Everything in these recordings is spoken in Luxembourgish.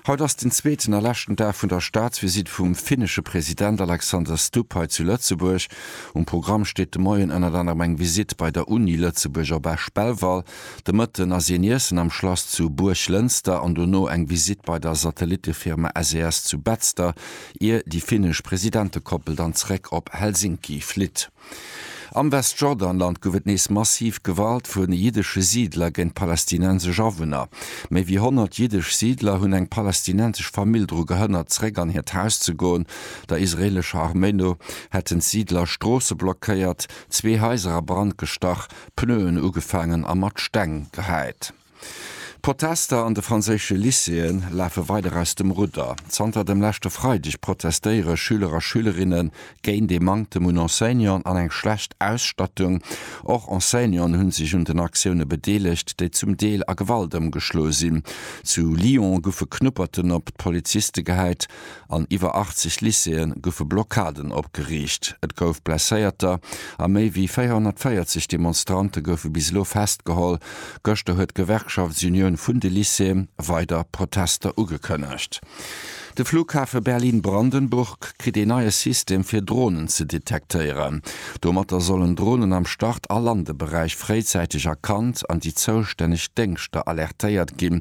Haut ass den zweeten a leschten Dag vun der Staatsvisitt vum finnesche President Alexander Stubb hei zu Lëtzebuerg. Um Programm steet de Moien ënnert anerem eng Visitt bei der Uni Lëtzebuerg op Esch-Belval. De Mëtten ass een iessen am Schlass zu Buerglënster an dono eng Visitt bei der Satellittefirma SES zu Betzder, ier déi finnesch Presidentekoppel dann zeréck op Helsinki flitt. Am Westjordanland gouf et nees massiv Gewalt vu jiddesche Siidler géint palästinensesch Awunner. Méi wéi 100 jiddesch Siidler hunn eng palästinensesch Famill dru gehënnert, zeréck an hiert Haus ze goen. Der israeelescher Arméi no hätten d'Siidler Stroosse blockéiert, zwee Haiser a Brand gestach, Pneuen ugefaangen a mat Steng gehäit. D'Protester an de franséische Lycéeë lafe weider aus dem Rudder. Zanter dem leschte Freideg protestéiere Schüler a Schülerinne géint ee Manktem un Enseignanten an eng schlecht Ausstattung. Och Enseignanten hu sech un den Aktioune bedeelegt, déi zum Deel a Gewalt ëmgeschloe sinn. Zu Lyon goufe Knupperten op d'Poliziste gehäit. An iwwer 80 Lycéeë goufe Blockaden opgeriicht, et gouf Blesséierter a méi wéi 440 Demonstrante goufe bis elo festgeholl. Gëschter huet d'Gewerkschaftsunioun vun de Lycéeë weider Protester ugekënnegt. De Flughafe Berlin-Brandenburg kritt ee neie System fir Dronen ze detektéieren. Domatter sollen Dronen am Start a Landeberäich fréizäiteg erkannt an déi zoustänneg Déngschter alertéiert ginn,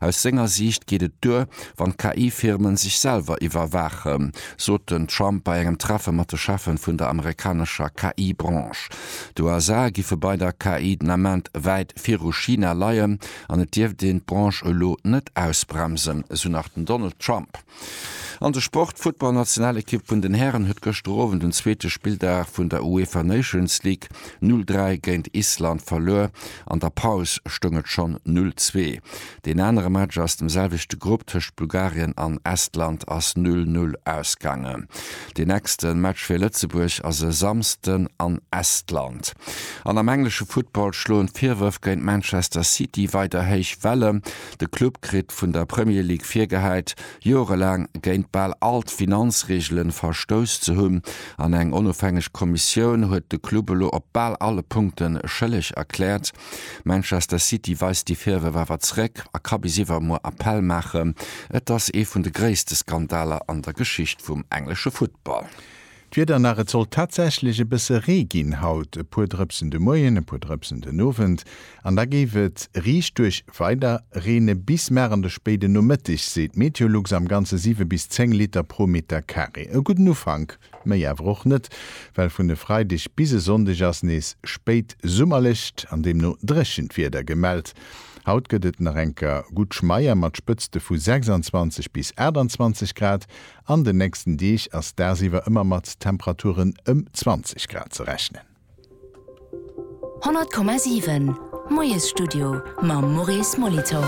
Aus senger Siicht geet et duer, wann d'KI-Firmen sech selwer iwwerwaachen, sot den Trump bei engem Treffe mat de Cheffen vun der amerikanescher KI-Branche. D'USA giffe bei der KI den Ament wäit viru China leien an et dierft een d'Branche elo net ausbremsen, esou nach den Donald Trump. An de Sport, D'Futtballnationalekipp vun den Hären huet gëschter Owend den zweete Spilldag vun der UEFA Nations League 0, 3 géint Island verluer. An der Paus stoung et schonn 0, 2. Deen anere Match aus dem selwechte Grupp tëscht Bulgarien an Estland ass 0, 0 ausgaangen. Deen nächste Match fir Lëtzebuerg ass e Samsden an Estland. An am englesche Futtball schloen d'Virwërf géint Manchester City weider héich Welle. De Club kritt vun der Premier League virgehäit, joerelaang géint bal all d'Finanzreegelen verstouss ze hunn, an eng onofhängeg Kommissioun huet de Club elo op bal alle Punkte schëlleg erkläert. Manchester City weist déi Virwërf awer zeréck a ka bis iwwermuer Appell maachen. Et ass ee vun de gréisste Skandaler an der Geschicht vum englesche Futtball. D'Wieder nach, Et sollt tatsächlech e bësse Ree ginn haut, e puer Drëpsen de Moien, e puer Drëpsen den Owend an da géif et riichtduerch weider reene bis mar an de spéiden Nomëttig, seet Meteolux. Am Ganze 7 bis 10 Liter pro Meter Carré. E gudden Ufank, méi awer och net, well vun e Freideg bis e Sonndeg ass nees spéit summerlecht an deemno dréchent Wieder gemellt. Haut gëtt et nach enker gutt Schmeier mat Spëtzte vu 26 bis 28 Grad. An den nächsten Deeg ass dagsiwwer ëmmer mat Temperaturen ëm 20 Grad ze rechnen. 100,7 Moiesstudio mam Maurice Molitor.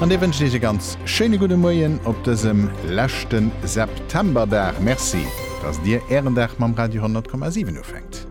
An dir wënscht Iech e ganz schéine gudde Moien op dësem leschte Septemberdag. Merci, dass dir Ären Dag mam Radio 100,7 ufänkt.